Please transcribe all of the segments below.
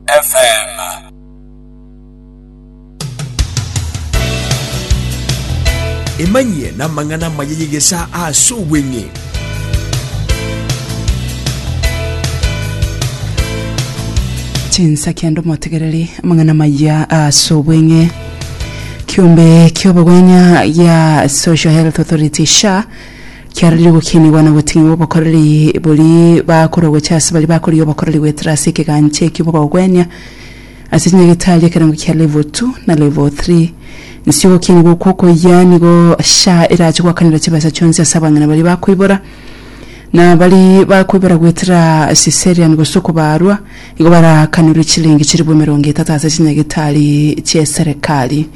FM. Emanyie namang'ana amaya y'egesa ase obweng'e. chinsa kiande omotegereri amang'ana maya ase obweng'e kiombe kiobogwenia gia social health authority sha Kiarorire ogokiinigwa na oboting'i bw'obokoreri boria bakorwa gocha ase baria bakorigia obokoreri goetera ase ekegancha ekio bobogwenia ase chinyagetari ekerengo kia Level Two na Level Three. Inse y'ogokiinigwa okwo okoyia nigo SHA erache goakanera chibesa chionsi ase abang'ina baria bakoibora na baria bakoibora goetera cesarean gose okobaarwa, Igo baraakanire chiliingi chilifu emerongo etato ase chinyagitari chi'eserekari.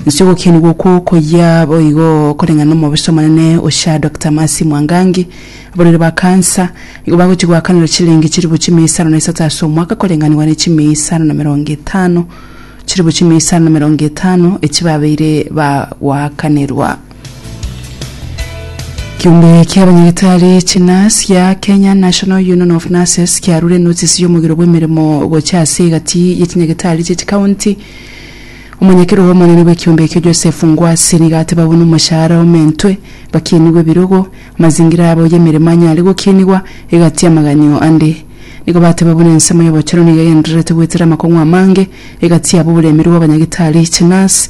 Inse ogokienigwa okwo koyia boigo koreng'ana n'omobisa omonene o SHA Dokita Mercy Mwangangi. Abarwaire ba kansa igo bagochia goakanera chiliingi chilifu chimia isano na isato ase omwaka koreng'anigwa ne chimia isano na emerongo etano chilifu chimia isano na emerongo etano echi babeire bagoakanerwa. Kiombe kia abanyagitari chinurse ya Kenya National Union of Nurses kiarure notice y'omogiro bw'emeremo gocha ase egati ye chinyagitari chie chikaunti omonyakerogo omonene bw'ekiombe ekio Joseph Ngwasi nigo atebabwo nomoshahara omentwe bakienigwe ebirogo amazingira abo y'emeremo anyare gokienigwa egati y'amaganio ande nigo bateba buna ensemo y'obochenu nigo egendererete goetera amakong'u amange egati yabo oboremi rw'abanyagitari chinurse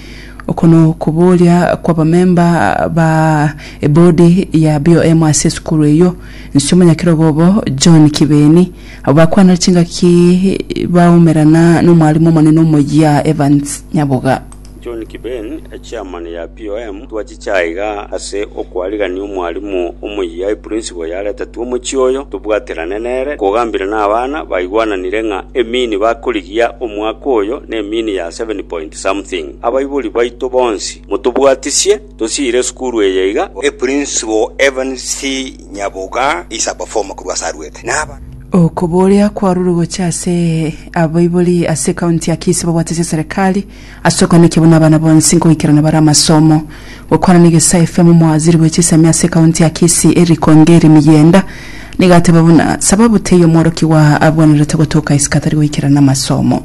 Oko nokoboria kw'abamemba ba ebodi ya BOM ase esukuru eyio, inse omonyakerogo obo John Kibeni, abo bakwanire chingaki baumerana n'omwalimu omonene omoyia Evans Nyaboga. John Kibeni, Chairman ya BOM, Twachia Chiaiga ase okwarigania omwarimu omoyia epurinsipo yaretetwe omochie oyo tobwaterane nere, kogambire nabana baigwananire ng'a emini bakorigia omwaka oyo nemini ya seven point something. Abaibori baito bonsi motobwatisie, tosiire esukuru eye iga. Epurinsipo Evans Nyaboga is a performer korwa ase arwete na abana. Okoboria kwarure gocha ase abaibori ase county ya Kisii babwatisie serikali. Ase okoanekio buna abana bonsi nkoikerana bare amasomo, gokwana n'egesae FM omoaziri bwe chisemi ase ekaunti ya Kisii Eric Kongeri Miyenda nigo ateba buna sababu teiyo omworokigwa abwenerete gotoka isiko atari goikerana amasomo.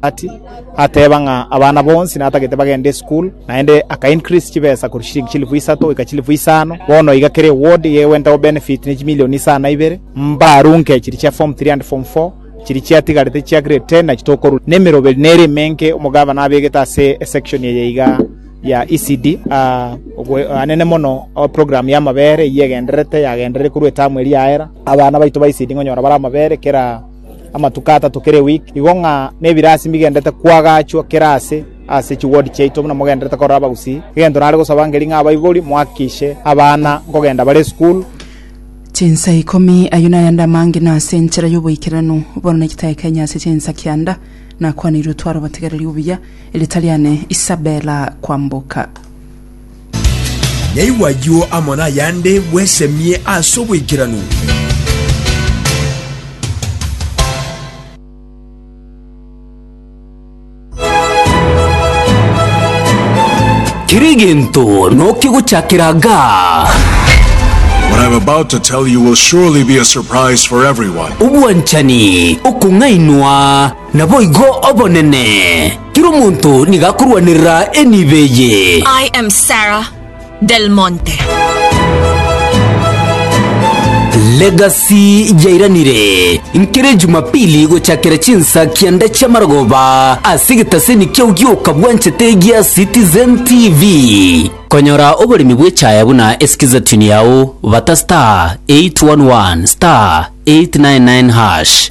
Ati, ateba ng'a abana bonsi natagete bagende esukuru, naende aka increase chibesa korwa shilingi chilifu isato goika chilifu isano, bono iga kera eward iga egwenta gobenefit ne chimilioni isano na ibere, mbarunke chiria chia form three and form four. Chiria chiatigarete chia Krete nachio tokorwa nemeroberi nere emenke. Omogabana abegete ase esection eye iga ya ECD. Ah, ogwe- anene mono o program y'amabere eyio egendererete yagenderire korwa etamu eria yaera. Abana baito ba ECD nkonyora bare amabere kera amatuko atato kera eweek. Igo ng'a nebirasi mbigendererete koagachwa kera ase ase chiward chiaito buna mogendererete korora abagusii. Egento nare gosaba nkeri ng'a abaibori moakikishe abana nkogenda bare esukuru. Chinsa ikomi ayio nayande amange na ase enchera y'oboikeranu, bono negitaika enye ase chinsa kianda, nakwaniirwe twara obotigereri obuya, erieta riane Isabela kwamboka. Naigwe ayio amo nayande bwesemie ase oboikeranu. Kera egento nokia gochakera gaa. What I'm about to tell you will surely be a surprise for everyone. Obwanchani, okong'ainwa, naboigo obonene. Kera omonto nigo akorwanerera enibo eye. I am Sarah. Del Monte. Legacy yairanire nkere Jumapili gochakera chinsa kianda chia marogoba ase egetaseni kiao gioka bwanchete gia Citizen TV. Konyora oboremi bw'echaya buna eskizaTune yao bata star 811 star 899 hash.